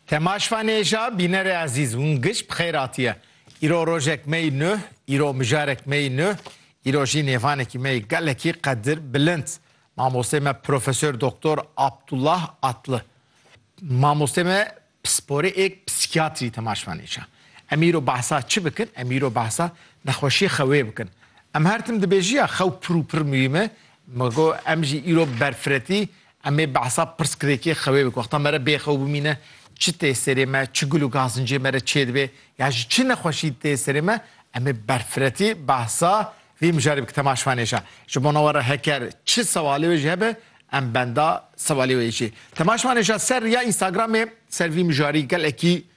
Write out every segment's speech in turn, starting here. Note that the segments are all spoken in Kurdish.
Temaş Fanêja bînerê ezîz hûn giş bi xêr hatiye. Îro rojek me yî nuh, îro mijarek me yî nuh, îro jî nêvanekî me yî gelekî qedir bilind. Mamostê me Profesor Doktor Abdullah Atlı. Mamostê me pisporê ê psîkiyatrî Temaş Fanêja. Em îro behsa çi bikin? Em îro behsa nexweşiyê xewê bikin. Em her tim dibêjiya xew pir û pir muhîm e. Me got em jî îro berfiretî Em ê behsa pirsgirêkê xewê bi ku wexta me re bêxew bimîne çi tê serê me, çi gul û gazincê me re çêdibe ya ji çi nexweşî tê serê me, em ê berfiretî behsa vî mijarê bikin. Tema şivan êşa ji bona we re heker çi sewalê wê jî hebe em benda sewalê wê jî. Tema şivan êşa ser riya Instagramê ser vî mijarî gelekî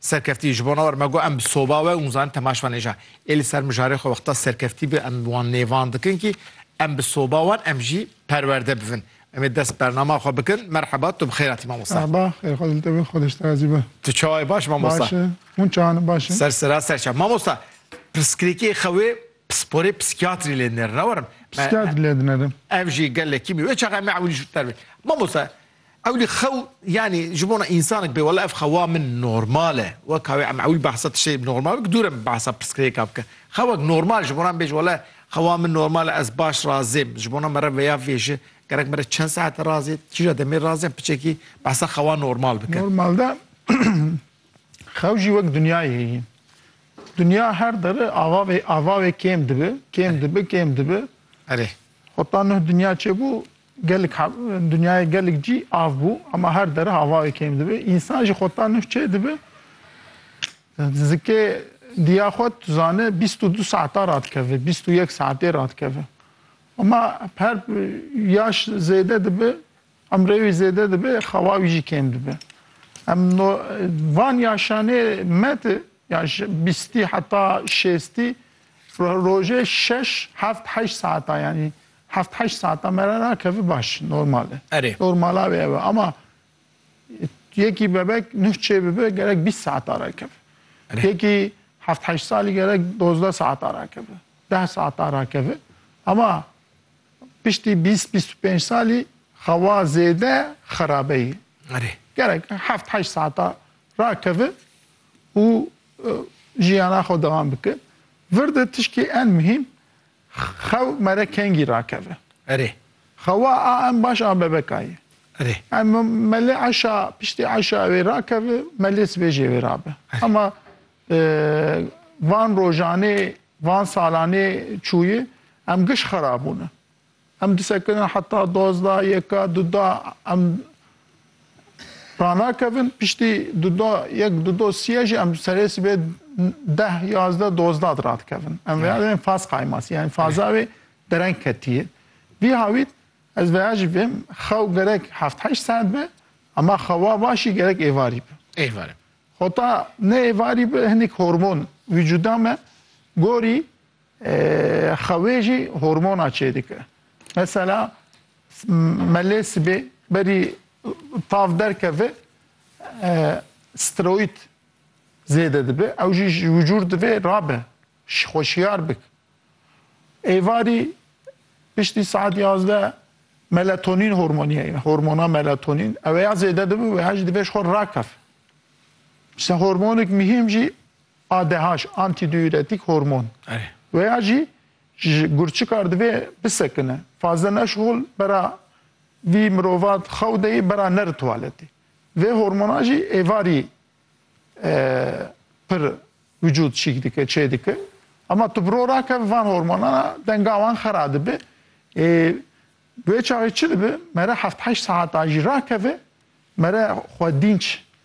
Serkeftî, ji bona we me got em bi soba we û min zanîn Temaş van Êja ê li ser mijarê xwe wexta serkeftî bi em wan nêvandikin kî em bi soba wan em jî perwerde bivin. Em ê dest bernama xwe bikin. Merheba, tu bi xêr hatî mamosta. Merhaba, xêr xwe li te be, xwedeş te razî be. Tu çawa yî baş mamosta? Baş e, hûn çawa ne baş in? Ser sira ser çawa. Mamosta, pirsgirêkê xewê pisporê psîkiyatrî lê dinerin, ne werim? Psîkiyatrî lê dinerin. Ev jî gelekî mî wê çaxa em ê ewilî jû te re bê. Mamosta, Ewlî xew yanî ji bona însanek bê wela ev xewa min normal e. Weka wê em ewil behsa tiştê normal bikin dûr e min behsa pirsgirêka bike. Xewek normal ji bona min bêje wela xewa min normal e ez baş razêm. Ji bona min re veya vêji gerek min re çend saete razê kîja demê razê em piçekî behsa xewa normal bike. Normalde xew jî wek dinyayê heye. Dinya her dere ava vê ava vê kêm dibe, kêm dibe, kêm dibe. Erê. Hota nuh dinya çêbû gelek dinyayê gelek cî av bû ema her dereh avayê kêm dibe. Însan jî xota nuh çê dibe zikê diya xwe tu zane bîst û du saeta radikeve, bîst û yek saetê radikeve. Ema her yaş zêde dibe, emrê wî zêde dibe, xewa wî jî kêm dibe. Em no van yaşanê me de Ya ji bîstî heta şêstî rojê şeş, heft, heşt saetan yanî heft heşt saetan me re rakeve baş normal e. Erê. Normala wê ev e ama yekî bebek nuh çê bibe gerek bîst saetan rakeve. Erê. Yekî heft heşt salî gerek dozdeh saetan rakeve. Deh saetan rakeve. Ama piştî bîst bîst û pênc salî xewa zêde xerabeyî. Erê. Gerek heft heşt saetan rakeve. û jiyana xwe dewam bike. Vir de tişkê en muhîm xew mere kengî rakeve. Erê. Xewa a em baş a bebeka ye. Erê. Em melê eşa piştî eşa ew ê rakeve, melê sibê jê wê rabe. Hema van rojanê, van salanê çûyê em giş xera bûne. Em disekirin heta dozda, yeka, duda em ranakevin. Piştî duda yek, dudo sîye jî em serê sibê deh, yazdeh, dozda radikevin. Em veya dibin faz qaymasî yanî faza wê dereng ketiye. Vî hawît ez veya jî vêm xew gerek heft heşt saet be ema xewa başî gerek êvarî be. Êvarî. Hota ne êvarî be hinek hormon vîcuda me gorî Xewê jî hormona çêdike. Mesela melê sibê berî tav derkeve steroid zêde dibe ew jî ji wicûr divê rabe xweşiyar bik. Êvarî piştî saet yazdeh melatonîn hormonî heye hormona melatonîn ew ya zêde dibe û ya jî divê ji xwe rakefe. Ji hormonik mihîm jî ADH, antidiuretik hormon. We ya jî ji gurçikar divê bisekine. Fazil Neşhol bera vî mirova xew de yê bera neri tuwaletê. Vê hormona jî êvarî pir wicûd çîk dike, çê dike. Ema tu bi ro rakeve van hormonan a denga wan xera dibe. Ê bi wê çaxê çi dibe? Mere heft heşt saetan jî rakeve, mere xwe dînç